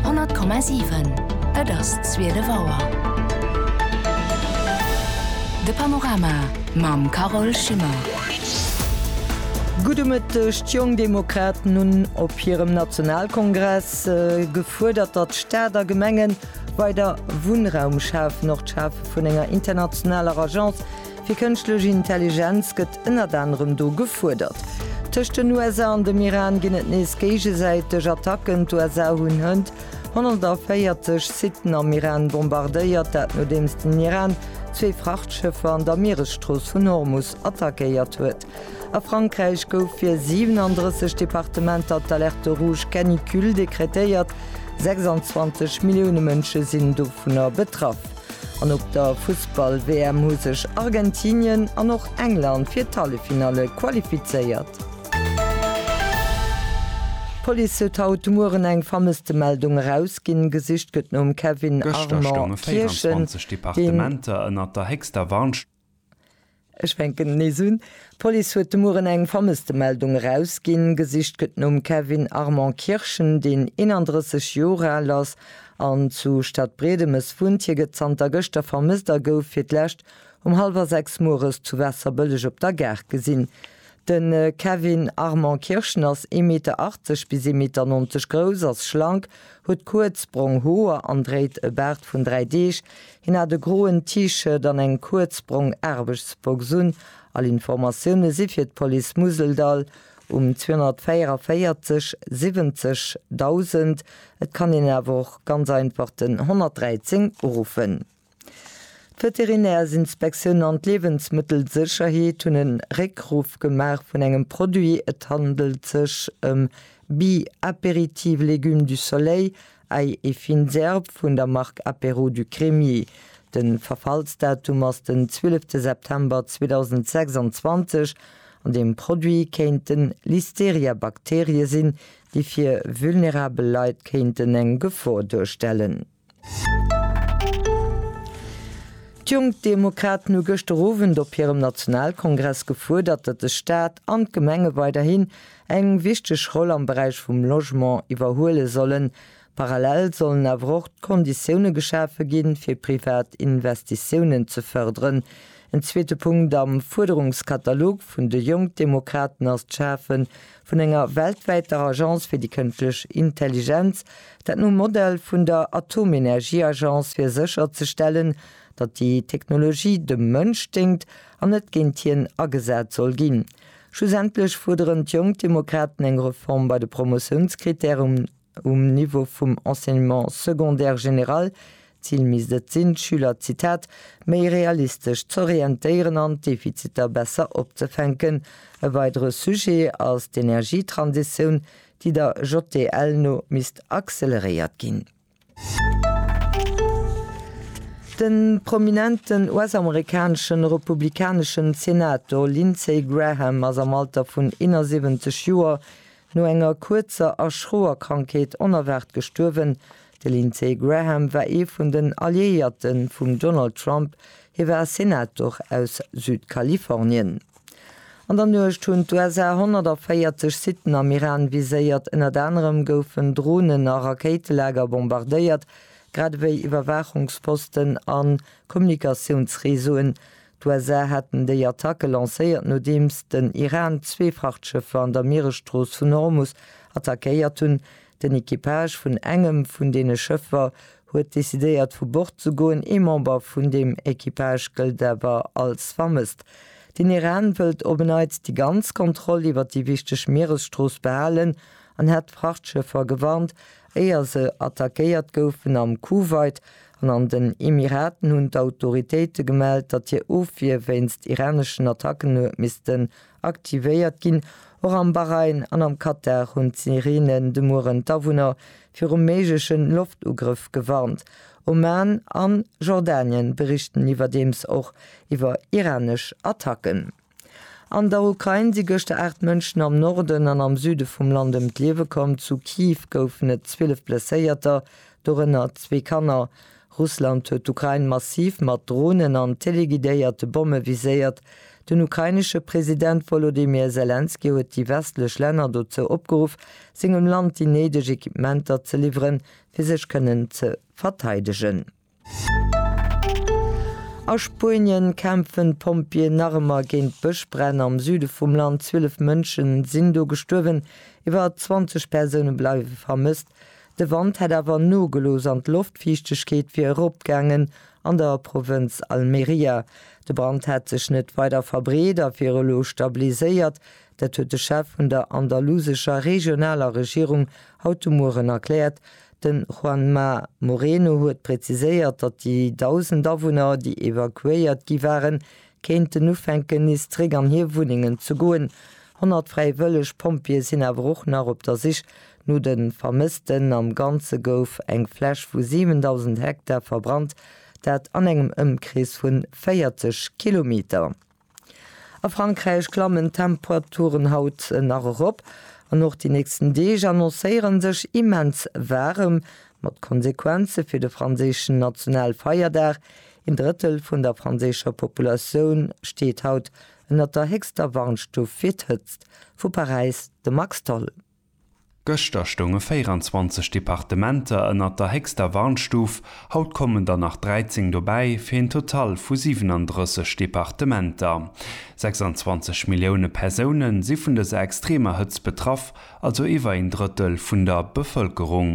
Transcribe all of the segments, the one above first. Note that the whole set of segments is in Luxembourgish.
100,7 Et ass 12 Auer. De Panorama mam Carole Schimmer. Gudde Mëtteg. D'Jong Demokraten hunn op hirem Nationalkongress gefuerdert, datt Staat a Gemengen weider Wunnraum schafen. Och d'Schafe vun enger internationaler Agence Fir kënschtlech Intelligenz gëtt ënnert anerem do gefuerdert. Tëscht den USA an dem Iran ginn et nees géigesäiteg Attacken. D'USA hunn hënt 140 Siten am Iran bombardéiert, dat nodeems den Iran zwee Frachtschëffer an der Mieresstrooss vun Hormus attackéiert huet. A Frankräich gouf fir 37 Departementer d'Alerte rouge canicule dekretéiert, 26 Millioune Mënsche sinn dovunner betraff. An op der Fussball-WM hu sech Argentinien an och England fir d'Halleffinalle qualifizéiert. D'Police huet haut de Mueren eng Vermësstemeldung erausginn. Gesicht gëtt nom Kevin Armand Kirchen, deen. Ech fänken nees un. D'Police huet de Mueren eng Vermësstemeldung erausginn. Gesicht gëtt nom Kevin Armand Kirschen, deen 31 Joer al ass an zu Stadbriedemes wunnt. Hie gëtt zanter gëschter vermësst a gouf fir d'lescht um hallwer sechs mueres zu Waasserbëlleg op der Gare gesinn. De Kevin Armand Kirschen ass ee Meter 80 bis ee Meter 90 grouss, ass schlank, huet kuerz brong Hoer an dréit e Baart vun dräi Deeg. Hien hat e groen T-Shirt an eng kuerz brong Aarbechtsbox un. All Informatioune si fir d'Police Museldall um 244 70 1000. Et kann een awer och ganz einfach den 113 uruffen. D'Veterinärsinspektioun an d'Liewensmëttelsécherheet hunn e Réckruff gemaach vun engem Produit. Et handelt sech ëm Bi Apéritiv Légumes du Soleil, Ail et fines herbes vun der Mark Apéro du Crémier. De Verfallsdatum ass den 12 September 2026 an deem Produit kéinten Listeria-Bakterie sinn, déi fir vulnerabel Leit kéinten eng Gefor duerstellen. D'Jonk Demokraten hu gëschter Owend op hirem Nationalkongress gefuerdert, datt de Staat an d'Gemenge weiderhin eng wichteg Roll am Beräich vum Logement iwwerhuele sollen. Parallel sollen awer och d'Konditioune geschafe ginn, fir privat Investitiounen ze fërderen. En zweete Punkt am Fuerderungskatalog vun de Jonk Demokraten ass d'Schafe vun enger weltwäiter Agence fir déi kënschtlech Intelligenz, dat nom Modell vun der Atomenergieagence, fir sécher ze stellen, datt déi Technologie dem Mënsch déngt an net géint hien agesat soll ginn. Schlussendlech fuerderen d'Jonk Demokraten eng Reform bei de Promotiounskrittären. Um Niveau vum Enseignement secondaire général, d'Zil misst et sinn, d'Schüler, Zitat, méi realistesch z'orientéieren an d'Defiziter besser opzefänken. E weidere Sujet ass d'Energietransitioun, déi der JDL no misst acceleréiert ginn. De prominenten US-amerikanesche republikaneschen Senator Lindsey Graham ass am Alter vun 71 Joer No enger kuerzer a schroer Krankheet onerwaart gestuerwen. De Lindsey Graham war ee vun den Alliéierte vum Donald Trump, hie war Senator aus Südkalifornien. An der Nuecht hunn d'USA 140 Siten am Iran viséiert, ënnert anerem goufen Dronen a Rakéitelager bombardéiert, grad ewéi Iwwerwaachungsposten a Kommunikatiounsreseauen, D'USA haten déi Attacke lancéiert, nodeems den Iran zwee Frachtschëffer an der Mieresstrooss vun Hormus attackéiert hunn. Den Equipage vun engem vun deene Schëffer huet decidéiert vu Bord ze goen, ee Member vun deem Equipage gëllt awer als vermësst. Den Iran wëllt op en Neits déi ganz Kontroll iwwer déi wichteg Mieresstrooss behalen an hat d'Frachtschëffer gewarnt, Éier se attackéiert goufen am Kuwait an an den Emiraten hunn d'Autoritéite gemellt, datt hir Ofwier wéinst iraneschen Attacken hu missten aktivéiert ginn. Och am Bahrain an am Katar hunn d'Sireenen de Mueren d'Awunner virum méigleche Loftugrëff gewarnt. Oman an Jordanien berichten iwwerdeems och iwwer iranesch Attacken. An der Ukrain si gëschter 8 Mënschen am Norden an am Süde vum Land ëm d'Liewe komm. Zu Kiew goufen et 12 Blesséierter, dorënner zwee Kanner. Russland huet d'Ukrain massiv mat Dronen an teleguidéierte Bomme viséiert. Den ukrainesche President Wolodymyr Selenskyj huet déi westlech Länner dozou opgeruff, sengem Land déi néideg Equipementer ze liwweren, fir sech kënnen ze verteidegen. A Spuenien kämpfen d'Pompjeeën nach ëmmer géint Bëschbränn. Am Süde vum Land 12 Mënschen sinn do gestuerwen, iwwer 20 Persoune bleiwe vermësst. De Wand hätt awer nogelooss an d'Loftfiichtegkeet wier eropgaangen an der Provënz Almeria. De Brand hätt sech net weider verbreet a wier elo stabiliséiert. Dat huet de Chef vun der andalusescher regionaler Regierung haut de Mueren erkläert. De Juanma Moreno huet präziséiert, datt déi 1.000 Awunner, déi evakuéiert gi waren, kéinten ufänken nees zeréck an hir Wunnengen ze goen. 100 fräiwëlleg Pompjeeë sinn awer och nach op der Sich no de Vermëssten. Am Ganze gouf eng Fläch vu 7.000 Hektar verbrannt, dat an engem Ëmkrees vu 40 Kilometer. A Frankräich klammen d'Temperaturen haut nach erop an och déi nächsten Deeg annoncéiere sech immens waarem, mat Konsequenze fir de franséischen Nationalfeierdag. Een Drëttel vun der franséischer Populatioun steet haut ënnert der héchster Warnstuf fir d'Hëtzt. Vu Paräis de Max Tholl. Gëschter stounge 24 Departementer ënnert der héchster Warnstuf, haut kommen der nach 13 dobäi, fir een Total vu 37 Departementer. 26 Millioune Persoune si vun dëser extremer Hëtzt betraff, also iwwer een Drëttel vun der Bevëlkerung.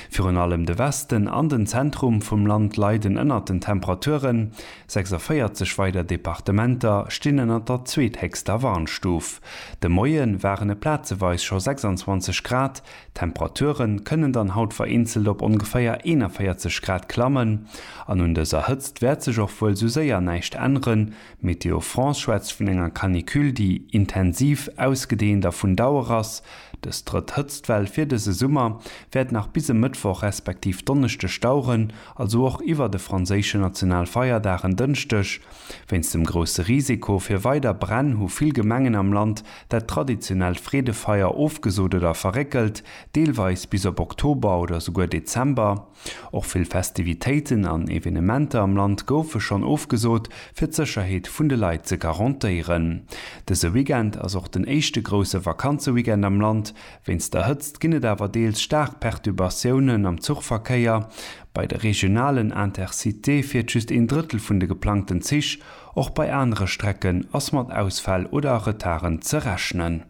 Virun allem de Westen an den Zentrum vum Land leiden ënnert den Temperaturen. 46 weider Departementer stinn ënnert der zweethéchster Warnstuf. De Moie waren et plazeweis scho 26 Grad. D'Temperature kënnen dann haut vereenzelt op ongeféier 41 Grad klammen. An un dëser Hëtzt wäert sech och wuel sou séier näischt änneren. Météo France schwätzt vun enger Canicule, déi intensiv, ausgedeent a vun Dauer ass. Dës drëtt Hëtztwell fir dëse Summer wäert nach bis e Mëttwoch respektiv Donneschdeg daueren. also och iwwert e franséische Nationalfeierdag en Dënschdeg. Wéinst dem grousse Risiko fir weider Bränn hu vill Gemengen am Land dat traditionellt Freedefeier ofgesot oder verréckelt, deelweis bis op Oktober oder souguer Dezember. Och vill Festivitéiten an Evenementer am Land goufe schonn ofgesot, fir d'Sécherheet vun de Leit ze garantéieren. Dëse Weekend ass och den éischte grousse Vakanzeweekend am Land, Wéinst der Hëtzt ginn et awer deels staark Perturbatiounen am Zuchverkéier. Bei de regionalen Intercitéë fiert just een Drëttel vun de geplangten Zich, och bei anere Strecken ass mat Ausfäll oder Retarden ze rechnen.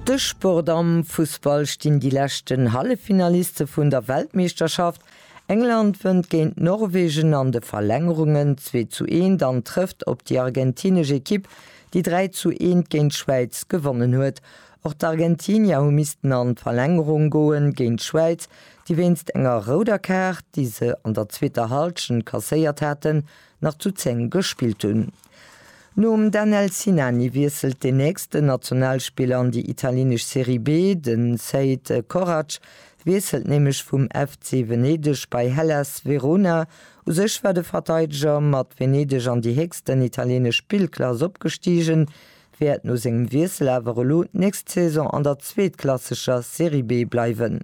De Sport, Am Fussball stinn déi leschten Halleffinaliste vun der Weltmeeschterschaft. England wënnt géint Norwegen an de Verlängerungen, zwee zu eent, an trëfft op déi argentinesch Ekipp déi 3 zu 1 géint d'Schwäiz gewonnen huet. Och d'Argentinier hu missten an d'Verlängerung goen, géint d'Schwäiz, déi wéinst enger rouder Kaart, déi se an der zweeter Hallschent kasséiert haten, nach zu 10 gespillt hunn. Nom Danel Sinani wiesselt den nächsten Nationalspiller an déi italienesch Serie B. Den Sead Korać wiesselt nämlech vum FC Venedeg bei Hellas Verona, U sech war de Verteideger mat Venedeg an déi héchsten italienesch Spillklass opgestigen, wäert no sengem Wiessel awer elo d'nächst Saison an der zweetklassescher Serie B bleiwen.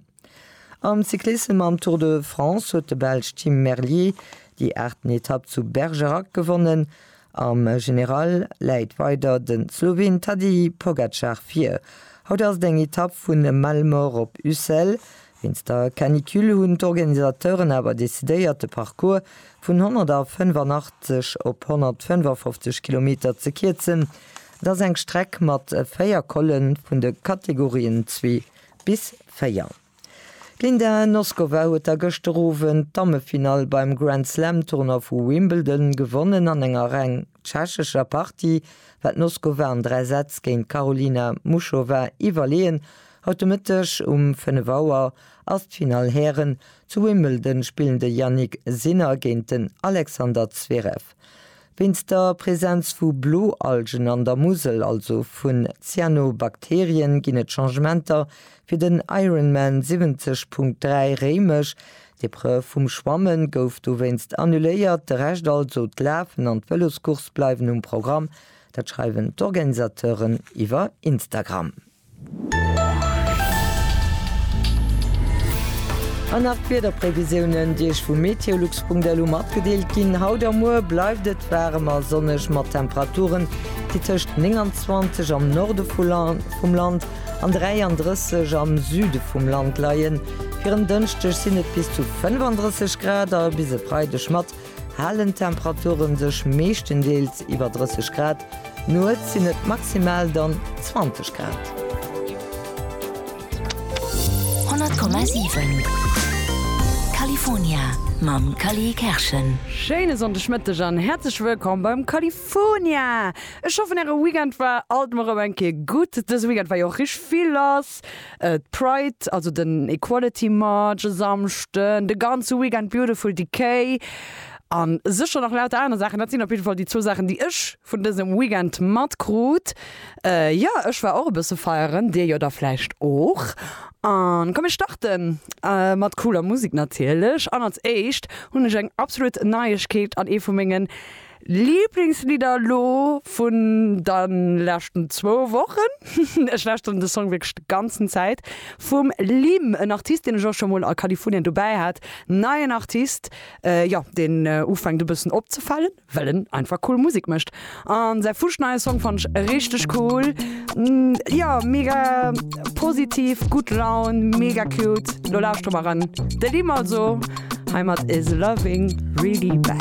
Am Cyclissem am Tour de France huet de Belsch Tim Merlier déi aachten Etapp zu Bergerac gewonnen. Am General läit weider de Sloween Tadej Pogacar vir. Haut ass et eng Etapp vun Malemort op Ussel, Wéinst der Canicule hunn d'Organisateuren awer decidéiert, de Parcours vun 185 op 155 Kilometer ze kierzen. Et ass eng Streck mat véier Colle vun de Kategorien zwee bis véier. D'Linda Noskova huet da gëschter Owend d'Dammefinall beim Grand-Slam-Tournoi vu Wimbledon gewonnen an enger reng. tschechescher Partie war d'Noskova an 3 Sätz géint d'Karolina Muchova iwwerleeën. Haut de Mëtteg um 5 Auer ass d'Finall Hären. Zu Wimbledon spillen de Jannik Sinner géint den Alexander Zverev. Wéinst der Presenz vu Bloalgen an der Musel, also vun Cyanobakterien, ginn et Changementer fir den Ironman 70.3 Réimech, D'Epreuve vum Schwamme gouf dowéinst annuléiert, de Rescht, also d'Lafen an d'Vëloscourse bleiwen um Programm. Dat schreiwen d'Organisateuren iwwer Instagram. An nach d'Wiederprevisiounen, déi Iech vu meteolux.lu matgedeelt ginn. Haut a muer bleift et waarem a sonneg mat Temperaturen, déi tëscht 29 am Norde vum Land an 33 am Süde vum Land leien. Fir en Dënschdeg sinn et bis zu 35 Grad a bis e Freideg mat halen Temperature sech meeschtendeels iwwer 30 Grad. Nuets sinn et maximal dann 20 Grad. 100,7 California mam Cally Kerschen. Schéine Sonndegmëtteg an häerzlech wëllkomm beim California. Fonia! Ech hoffen äre Weekend war alt mol rem eng Kéier gutt. Dëse Weekend war jo och richteg vill lass, d'Pride, also den Equality March e Samschden, de ganze Weekend Beautiful Decay an sécher nach lauter aner Saachen. Dat sinn op jidde Fall déi zwou Saachen déi ech vun dësem Weekend mat krut. Jo ech war och e bësse feieren, dir jo da vläicht och. An komm mir starten mat cooler Musek natierlech an als éischt hunn ech eng absolut Neiegkeet an ee vu mengen Lieblingslidder elo vun dann leschten zwou Wochen, ech lauschteren de Song wierklech de ganzen Zäit, vum Limm, en Artist deen ech och scho mol a Kalifounien dobäi hat, neien Artist, jo deen ufänkt e bëssen opzefalen, well en einfach cool Musek mécht an säi fuschneie Song fannen ech richteg cool, jo mega positiv, gutt Laun, mega cute, lo lauschtere mer eran de Limm also hei mat Is Loving Really Bad.